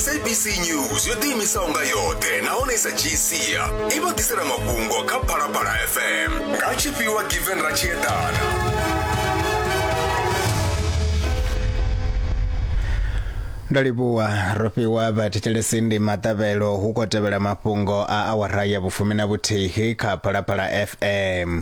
sabc news yo ḓiimisaho nga yoṱhe nahone i sa dzhii sia i vha ḓisela mafhungo kha phalaphala fm nga tshifhiwa given ra tshi eḓana ndo livhuwa ro fhiwa vhathetshelesi ndi maṱavhelo hu khou tevhela mafhungo a awara ya vhufumi na vhuthihi kha phalaphala fm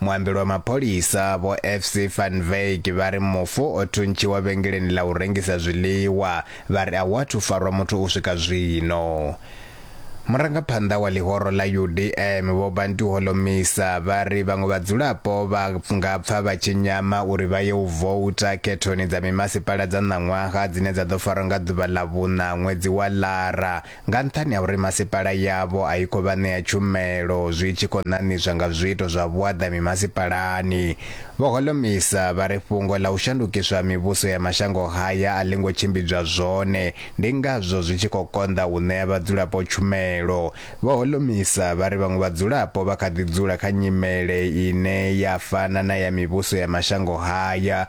Muambeli wa mapholisa vho FC van Wyk vha ri mufu o thuntshiwa vhengeleni ḽa u rengisa zwiḽiwa, vha ri a hu athu farwa muthu u swika zwino. Murangaphanḓa wa ḽihoro ḽa UDM vho Bantu Holomisa vha ri vhaṅwe vhadzulapo vha nga pfa vha tshi nyama uri vha ye u vouta khethoni dza mimasipala dza ṋaṅwaha dzine dza ḓo farwa nga ḓuvha ḽa vhuṋa ṅwedzi wa Lara nga nṱhani ha uri masipala yavho a i khou vha ṋea tshumelo zwi tshi khou ṋaṋiswa nga zwiito zwa vhuaḓa mimasipalani. Vho Holomisa vha ri fhungo ḽa u shandukiswa ha mivhuso ya mashango haya a ḽi ngo tshimbidzwa zwone, ndi ngazwo zwi tshi khou konḓa u ṋea vhadzulapo tshumelo. Vho Holomisa vha ri vhaṅwe vhadzulapo vha kha ḓi dzula kha nyimele ine ya fana na ya mivhuso ya mashango haya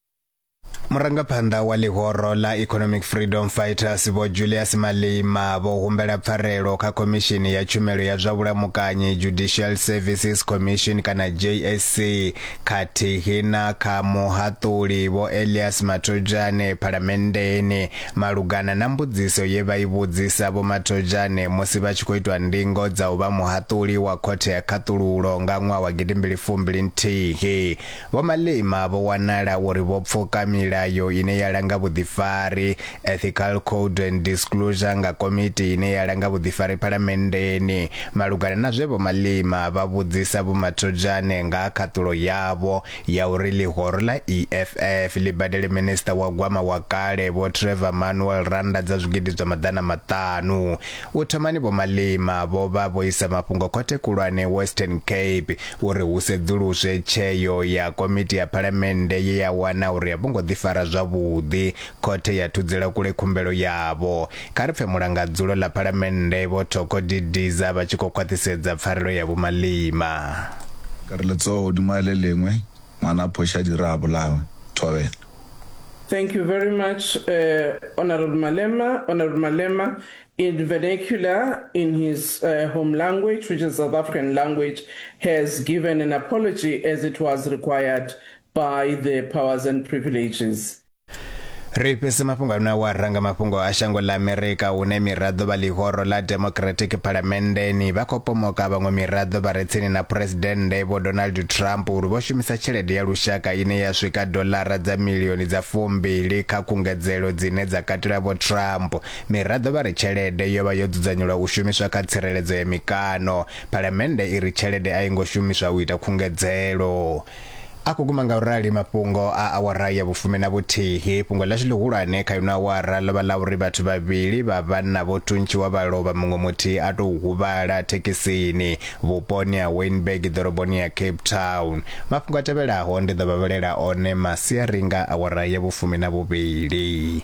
murangaphanḓa wa ḽihoro ḽa economic freedom fighters vho julius malima vho humbela pfarelo kha khomishini ya tshumelo ya zwa vhulamukanyi judicial services commission kana jsc khathihi na kha muhaṱuli vho elias mathojane phalamenndeni malugana na mbudziso ye vha i vhudzisa vho mathojane musi vha tshi khou itwa ndingo dza u vha muhaṱuli wa khothe ya khaṱululo nga ṅwaha wa gidimbili fumbili nthihi Vho Malema vho wanala uri vho pfuka milayo ine ya langa vhuḓifari, Ethical Code and Disclosure, nga komiti ine ya langa vhuḓifari Phalamenndeni. Malugana na zwe Vho Malema vha vhudzisa Vho Mathojane nga ha khaṱulo yavho ya uri ḽihoro ḽa EFF ḽi badele Minisiṱa wa Gwama wa kale Vho Trevor Manuel rannda dza zwigidi zwa maḓana maṱanu, u thomani Vho Malema vho vha vho isa mafhungo Khothe Khulwane Western Cape. uri hu sedzuluswe tsheo ya komiti ya phalamennde ye ya wana uri a vho ngo ḓifara zwavhuḓi. Khothe ya thudzela kule khumbelo yavho. Kha ri pfe mulangadzulo ḽa phalamennde Vho Thoko Didiza vha tshi khou khwaṱhisedza pfarelo ya Vho Malema. Ka re letsoho hodima a le lengwe, ngwana a phošadira a bolawa. Thobela. Thank you very much, uh, Honourable Malema. Honourable Malema, in vernacular in his uh, home language, which is South African language, has given an apology as it was required by the powers and privileges. ri fhise mafhungo ano wa ranga mafhungo a shango ḽa amerika hune miraḓo vha ḽihoro ḽa democratic phalamenndeni vha khou pomoka vhaṅwe miraḓo vha re tsini na phuresidennde vho donald trump uri vho shumisa tshelede ya lushaka ine ya swika doḽara dza milioni dza fumbili kha khungedzelo dzine dza katela vho trump Miraḓo vha ri tshelede yo vha yo dzudzanyelwa u shumiswa kha tsireledzo ya mikano. Phalamennde i ri tshelede a i ngo shumiswa u ita khungedzelo. A khou guma ngaurali mafhungo a awara ya vhufumi na vhuthihi. Fhungo ḽashu ḽihulwane kha ino awara ḽo vha ḽa uri vhathu vhavhili vha vhanna vho thuntshiwa vha lovha muṅwe muthihi a tou huvhala thekhisini vhuponi ha Wynberg ḓoroboni ya Cape Town. Mafhungo a tevhelaho ndi ḓo vha vhalela one masiari nga awara ya vhufumi na vhuvhili.